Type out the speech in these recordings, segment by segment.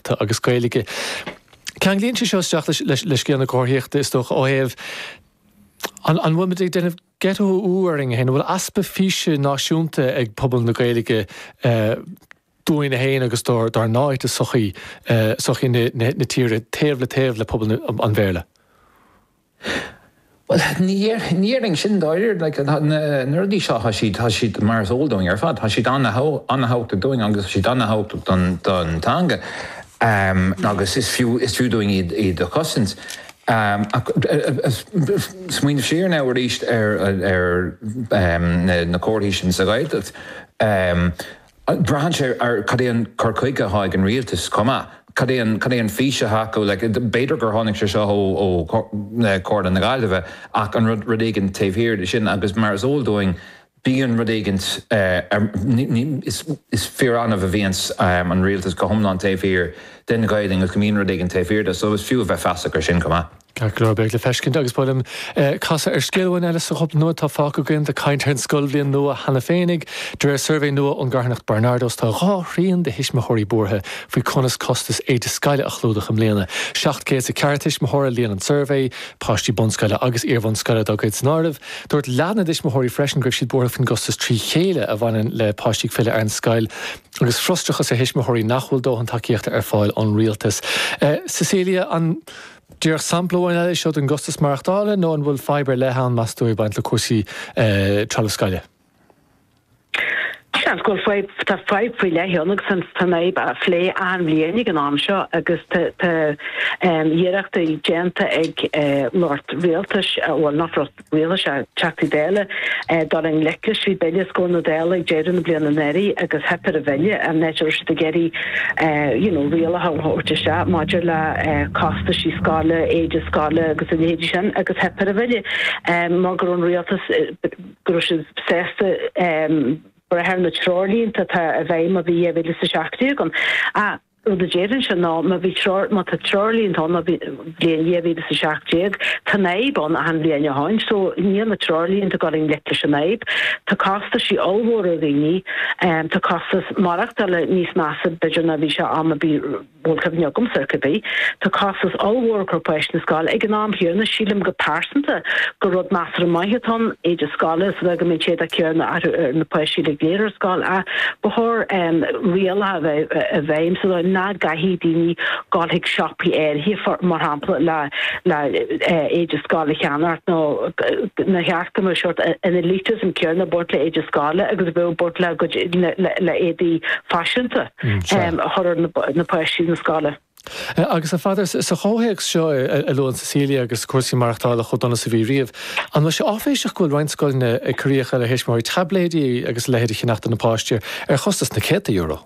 ta agus Gaeilge. Ceanglaíonn sé seo isteach le scéal na comharthaíochta is dócha ó thaobh an bhfuil muid ag déanamh ghetto orainn féin, an bhfuil easpa físe náisiúnta ag pobal na Gaeilge dúinne féin agus dár n-áit i sochaí na tíre taobh le taobh le pobal an Bhéarla? Bhuel, ní dhéarfainn sin dáiríre. Like, tá na rudaí seo, tá siad, tá siad mar is eol dúinn ar fad, tá siad an-thábhachtach dúinn agus tá siad an-thábhachtach don, don teanga. Agus is fiú, is fiú dúinn iad, iad a chosaint. Ach ag smaoineamh siar now arís ar, ar na comharthaí sin sa Ghaeltacht. Braitheann sé ar cad é an cur chuige atá ag an rialtas chomh maith, cad é an, cad é an fís atá acu. Like, b'fhéidir gur tháinig sé seo ó, ó Chomhairle na Gaillimhe ach an rud, rud éigint taobh thiar de sin agus mar is eol dúinn bíonn rud éigint ar, ní, ní, is, is fíor-annamh a bhíonns an rialtas go hiomlán taobh thiar den Ghaeilinn ach bíonn rud éigint taobh thiar de so is fiú a bheith feasach ar sin chomh maith. Ceart go leor beidh le feiscint agus ba mhaith liom casadh ar scéal amháin eile sa chúpla nóiméad atá fágtha againn ag caint ar an scoilbhliain nua cheana féinig. De réir suirbhé nua ón gcarthanacht Barnardos tá dhá thrian de thuismitheoirí buartha faoi conas costas éide scoile a chlúdach i mbliana. Seacht gcéad is a ceathair tuismitheoir a líon an suirbhé, páistí bunscoile agus iarbhunscoile dá gcuid san áireamh. Dúirt leath na dtuismitheoirí freisin go raibh siad buartha faoin gcostas trí chéile a bhaineann le páistí ag filleadh ar an scoil. Agus frustrachas ar thuismitheoirí nach bhfuil dóthain tacaíochta ar fáil ón rialtas. Cecilia, an díreach sampla amháin eile é seo den gcostas maireachtála nó an bhfuil fadhb ar leith ann, meas tú, ag baint le cúrsaí trealamh scoile? Seans go bhfuil fadhb, tá fadhb faoi leith ann agus an fhadhb á plé achan bhliain ag an am seo agus tá iarrachtaí déanta ag lucht rialtais, bhuel nach lucht, rialtais, Teachtaí Dála dul i ngleic leis trí bhille os comhair na Dála ag deireadh na bliana anuraidh agus theip ar an bhille i ndiaidh is go raibh siad ag iarraidh you know rialacha a thabhairt isteach maidir le costaisí scoile, éide scoile agus a leithéidí sin agus theip ar an bhille mar go raibh an rialtas go raibh siad sásta brath ar na treoirlínte atá i bhfeidhm ó bhí 2017 ann. rud a déarfainn sin, má bhí treoir, má tá treoirlínte ann, ó bhí an bhliain 2017, tá an fhadhb ann achan bhliain ó shin. So níl na treoirlínte ag dul i ngleic leis an fhadhb. Tá costaisí ollmhóra ar dhaoine. Tá costas maireachtála níos measa b'fhéidir ná bhí sé am a bhí, bhuel cuimhin liomsa ar scor ar bith. Tá costas ollmhór ag cur páistí chun na scoile. Ag an am chéanna sílim go pearsanta gur rud measartha maith atá ann, éide scoile is a bheith, go mbeidh an t-éadach céanna ar na páistí uilig go léir ar scoil ach ba chóir, rialacha a bheith i bhfeidhm sa dóigh nach gcaithfidh daoine dul chuig siopaí áirithe, mar shampla, le héide scoile a cheannach nó nach mbeadh an sórt elitism céanna ag baint le éide scoile agus a bheadh baint le, cuir i gcás, le héadaí faiseanta a chur ar páistí na scoile. Agus, a Pheadair, sa gcomhthéacs seo a luann Cecilia agus cúrsaí maireachtála chomh dona is a bhí riamh, an bhfuil sé áiféiseach go bhfuil roinnt scoileanna ag cur d'fhiacha ar thuismitheoirí taibléidí agus a leithéid a cheannach do na páistí ar chostas na céadta euro?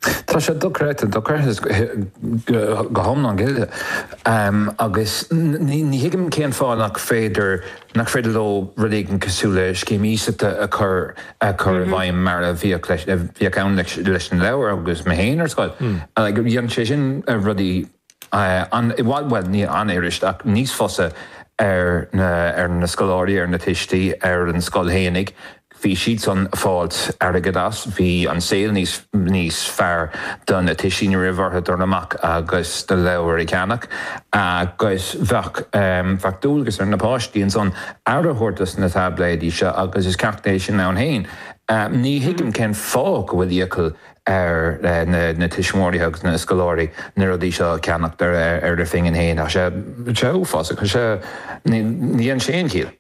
Tá sé dochreidte, dochreidte go hiomlán, a Cháit, agus ní thuigim cén fáth nach féidir nach féidir leo rud éigin cosúil le scéim iasachta a chur a chur i bhfeidhm mar a bhíodh leis a bhíodh ann leis leis na leabhair agus mé féin ar scoil dhéanann sé sin na rudaí i bhfad bhuel ní ana-fhuirist ach níos fusa ar na ar na scoláirí ar na tuistí ar an scoil fhéinig Bhí siadsan ag fáilt airgead as, bhí an saol níos níos fearr do na tuistí ní raibh ortha dul amach agus na leabhair a cheannach agus bheadh bheadh dualgas ar na páistí ansan aire a thabhairt dos na taibléidí seo agus is ceacht é sin ann fhéin. Ní thuigim cén fáth go bhfuil iachall ar na na tuismitheoirí agus na scoláirí na rudaí seo a cheannacht ar ar a bpingin fhéin, tá sé tá sé uafásach, tá sé ní dhéann sé aon chiall.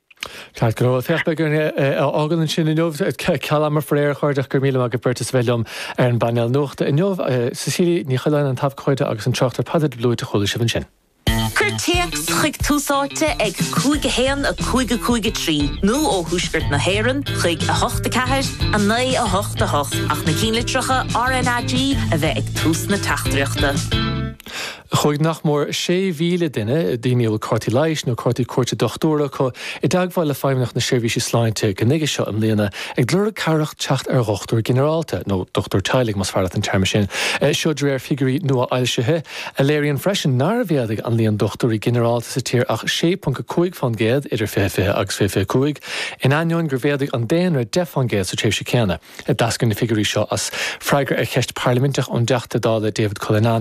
Ceart go leor, caithfidh muid é a fhágáil ansin inniu. Ceal ama faraor, a chairde, ach gura míle maith ag an mbeirt as a bheith liom ar an bpainéal nuachta inniu. Cecilia Ní Choileáin, an t-abhcóide agus an tráchtaire Peadar de Blúit a chuala sibh ansin. Cuir téacs chuig Tús Áite ag 5 1 5 5 3 nó ó Thuaisceart na hÉireann chuig 8 4 9 8 8 ach na cinnlitreacha RNAG a bheith ag tús na teachtaireachta. Chuaigh nach mór 6,000 duine, daoine a bhfuil cártaí leighis nó cártaí cuairte dochtúra acu, i dteagmháil le Feidhmeannacht na Seirbhíse Sláinte go nuige seo i mbliana ag lorg cabhrach teacht ar dhochtúir ginearálta, nó dochtúir teaghlaigh más fearr leat an téarma sin. Seo de réir figiúirí nua-fhoilsithe, a léiríonn freisin nár mhéadaigh an líon dochtúirí ginearálta sa tír ach 6.5 fán gcéad idir 2020 agus 2025, in ainneoin gur mhéadaigh an daonra 10 fán gcéad sa tréimhse chéanna. D'eascair na figiúirí seo as freagra ar cheist parlaiminteach ón dTeachta Dála David Cullinane,